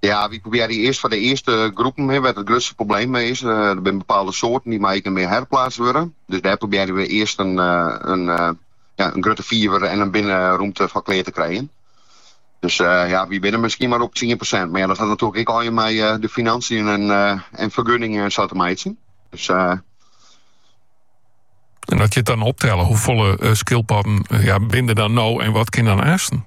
Ja, we probearje earst foar de earste groepen wêr't it grutste probleem mei is. Der eh, binne bepaalde soarten dy meie ek net mear herplaatst wurde. Dus dêr probearje we earst in, eh, in, eh, ja, in grutte fiver en in binnenromte foar klear te krijgen. Dus eh, ja, wy binne misskien mar op 10%. Mar ja, dat hat natuerlik ek allegear mei eh, de financiën en, eh, en fergunningen en sa te meitsjen. Dus eh, En at je it dan optelle, hoefolle eh, skyldpodden eh, ja, binne der dan no en wat kin dan aansten?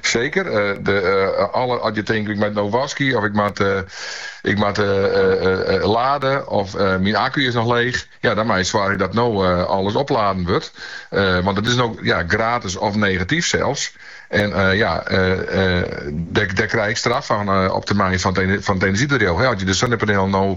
Seker. As je tinkt, ik moat no waskje of ik moat lade of myn akku is noch leech. Ja, dan moat je soargje dat no alles opladen wurdt. Want it is no gratis of negatyf sels. En ja, dêr krij ik straf fan op termyn fan it enerzjybedriuw. As je de sinnepanielen no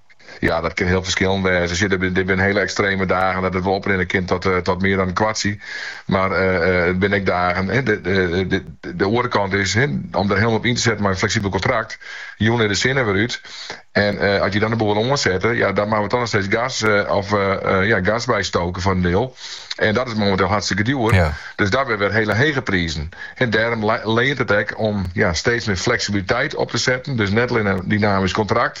Ja, dat kin hiel ferskillend wêze. Sje, der der binne hiele ekstreme dagen dat it wol oprinne kin tot, eh, tot mear dan in kwartsje. Mar eh, eh, der binne ek dagen, hè, de, de, de, de- de oare kant is, hè, om der helemaal op yn te setten mei in fleksibel kontrakt, jûn is de sinne wer út. En eh, as je dan de boel wer oansette, ja, dan moatte we toch noch steeds gas, eh, of, eh, eh, ja, gas bystoke foar in diel. En dat is momenteel hartstikke djoer. Ja. Dus dan ha we wer hiele hege prizen. En dêrom le- leant it ek om ja, steeds mear fleksibiliteit op te setten. Dus net allinne in dynamysk kontrakt,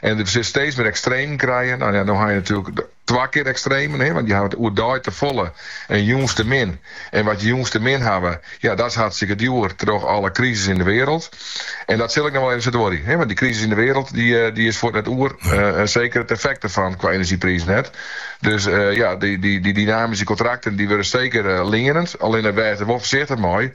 En dêr sil je steeds mear ekstremen krije. Nou ja, no ha je natuerlik twa kear ekstremen, hè, want je hawwe it oerdei tefolle en jûns te min. En wat je jûns te min hawwe, ja, dat is hartstikke djoer troch alle krisis yn de wereld. En dat sil ek noch wol even sa duorje, hè, want dy krisis yn de wereld dy is fuort net oer. En seker it effekt derfan qua enerzjyprizen net. Dus ja, dy dynamyske kontrakten dy wurde seker leanend. Allinne wês der wol foarsichtich mei,